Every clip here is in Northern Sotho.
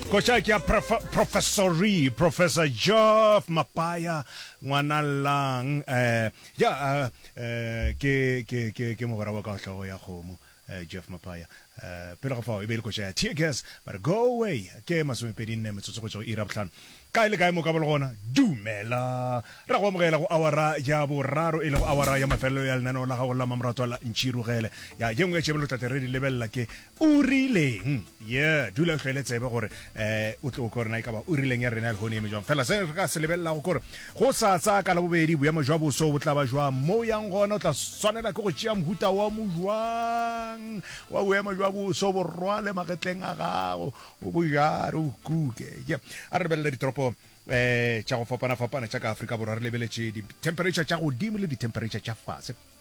koša ke ya professori professor jof mapaya ngwana lang um ja um ke ke ke ke mogwera wa ka hlogo ya kgomo eh, jeff mapaya um pele ga fao e be e le koša ya tear gas ba re go away ke masomepedi nne metsotso go tšwa go ira botlhano kae le kae mo ka bole gona dumela ra go amogela go awara ya boraro e le go awara ya mafelelo ya lenaneo la gago la mamoratwa la ntšhirugele ya ye nngwe ya tšebelo tlate re di lebelela ke O rileng? Yeah, dula o hlwele tsebe gore eh o tlo korena e ka ba o rileng ya rena le hone eme jwang. Fela se re ka se lebelela go kore go sa tsa ka la bobedi boemo jwa boso bo tla ba jwa mo yang gona o tla swanela ke go tšea mohuta wa mo jwang wa boemo jwa boso bo rwale magetleng a gago o bo jare o kuke. Yeah. A re lebelele ditoropo eh tša go fapana fapana tša ka Afrika Borwa re lebeletše di temperature tša godimo le di temperature tša fase.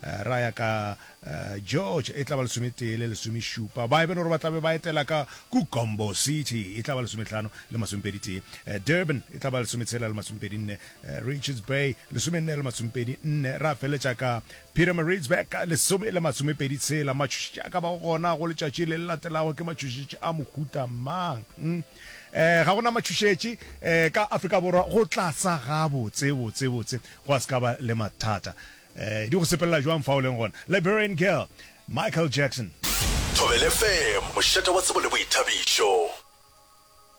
Ra ya ka George, e tla ba lesometee le lesomešupa. Ba Eben gore ba tla be ba etela ka Kugombo, City, e tla ba lesometlhano le masomepeditee. Durban, e tla ba lesometshela le masomepedinne. Richards Bay, lesomenne le masomepedinne. Ra feletša ka Pietermaritzburg, lesome le masomepeditshela. Matšhošetši a ka bago gona go letšatši le le latelago ke matšhošetši a mohuta mang? Ga go na matšhošetši ka Afrika Borwa go tlasa gabotse-botse-botse, gwa se ka ba le mathata. Ee, di go sepelela jwang fa o leng gona? Liberian Girl, Michael Jackson. Thobel FM, mošate wa tsebo le boithabišo.